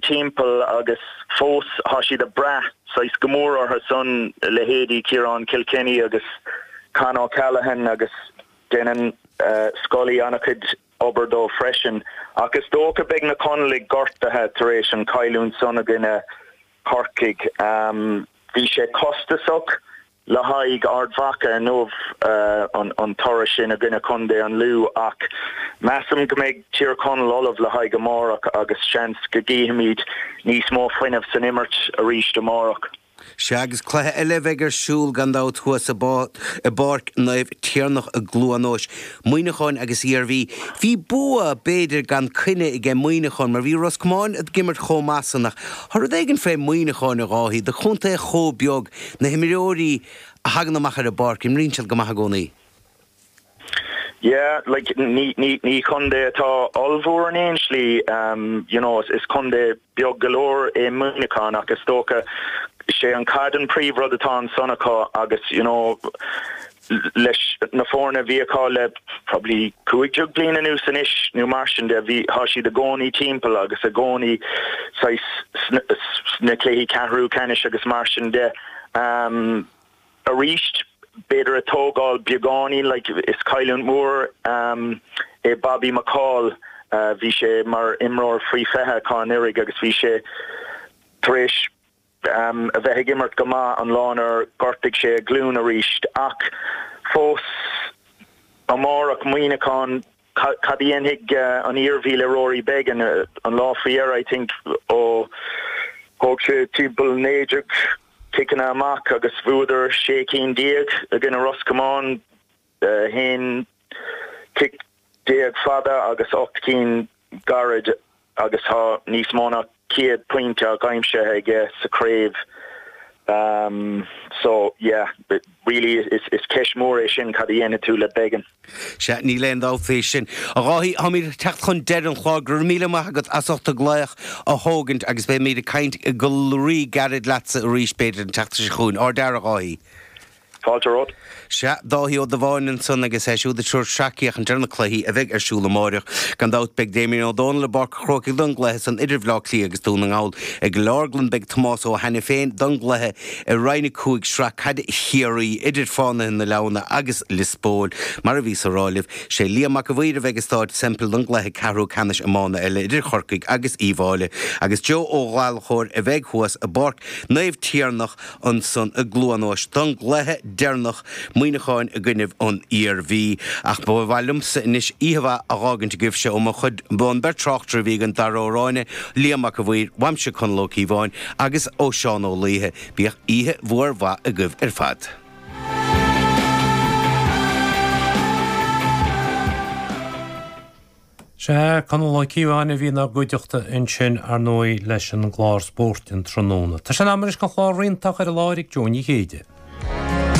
timpeall agus fós tá siad ag brath saghas go mór orthu san, leithéidí Ciarán Kilkenny agus Con O'Callaghan agus déanann Scully an-chuid obair dóibh freisin. Ach is dócha beidh na Conallaigh gortaithe tar éis an cailliúint san i gcoinne Corcaigh. Bhí sé costasach. le haghaidh Ard Mhacha inniu an toradh sin i gcoinne chontae an Lú ach measaim go mbeidh Tír Chonaill ullamh le haghaidh amárach agus seans go gcífimid níos mó fuinnimh san imirt arís amárach. Sea agus cluiche eile a bheidh ar siúl gan dabht thuas i bPáirc Naomh Tiarnach i gCluain Eois, Muineacháin agus Iarmhí. Bhí bua, b'fhéidir, gan coinne aige Muineacháin mar bhí Ros Comáin ag imirt chomh maith san ach tá rud éigin fé Mhuineacháin, a Dháithí, do chontae chomh beag, na himreoirí a thagann amach ar an bpáirc, imríonn siad go maith i gcónaí. Yeah, like, ní, ní, ní contae atá ollmhór in aon slí, you know, is contae beag go leor é Muineachán ach is dócha sé an caid an príomhrud atá ansan acu agus, you know, leis na foirne a bhí acu le probably cúig déag bliain anuas anois nó mar sin de. Bhí, tá siad i gcónaí timpeall agus i gcónaí saghas sna cluichí ceathrú ceannais agus mar sin de. Arís, b'fhéidir ag tógáil beagáinín like is cailliúint mhór é Bobby McCaul. Bhí sé mar imreoir faoi 20 acu anuraidh agus bhí sé tar éis, a bheith ag imirt go maith an lá inar ghortaigh sé a ghlúin arís. Ach fós, amárach, Muineachán, cad a dhéanfaidh an Iarmhí le Rory Beggan? An lá faoi dheireadh, I think, ó thóg sé timpeall 19 ciceanna amach agus bhuadar 16 cinn i gcoinne Ros Comáin, aon chic déag fada agus ocht gcinn gairid agus tá níos mó ná céad pointe aimsithe aige sa chraobh so yeah really is ceist mhór é sin cad a dhéanann tú le Beggan. Sea, níl aon dabht faoi sin. A Dháithí, táimid ag teacht chun deireadh an chláir. Go raibh míle maith agat as ucht an glaoch a thógaint agus beimid ag caint go rí-ghairid leatsa arís b'fhéidir an tseachtain seo chugainn. Ardfhear, a Dháithí. Fáilte romhat. Sea, Dáithí Ó Dubháin ansan agus é siúd ag tabhairt sracfhéachaint ar na cluichí a bheidh ar siúl amáireach. Gan dabht, beidh Damien Ó Dónaill i bPáirc an Chrócaigh don gcluiche san idir Bhleá Cliath agus Dún na nGall. I gCill Orglan beidh Tomás Ó hAiniféin don gcluiche i Roinn 5 Sraith Caide Chiarraí idir Fánaithe na Leamhna agus Lios Póil, mar a bhíos á rá libh. Sé Liam Mac a' Mhaoir a bheidh i Staid Semple don gcluiche ceathrú ceannais iomána eile idir Chorcaigh agus Uíbh Fhailí. Agus Joe Ó Gallchóir a bheidh thuas i bPáirc Naomh Tiarnach, ansan i gCluanóis don gcluiche deireanach Muineachán i gcoinnibh an Iarmhí. Ach ba mhaith liom-sa anois oíche mhaith a dh'fhágaint agaibh-se ó mo chuid, an bheirt tráchtaire a bhí againn Dara Ó Ráinne, Liam Mac a' Mhaoir, uaimse Conall Ó Cíobháin, agus ó Seán Ó Laoidhe. Bíodh oíche mhór mhaith agaibh ar fad. Sea, Conall Ó Cíobháin a bhí ina gcuideachta ansin, ar ndóigh, leis an gclár spóirt an tráthnóna. Tá sé in am anois an clár reachtaire a chur i láthair Jó Ní Chéide.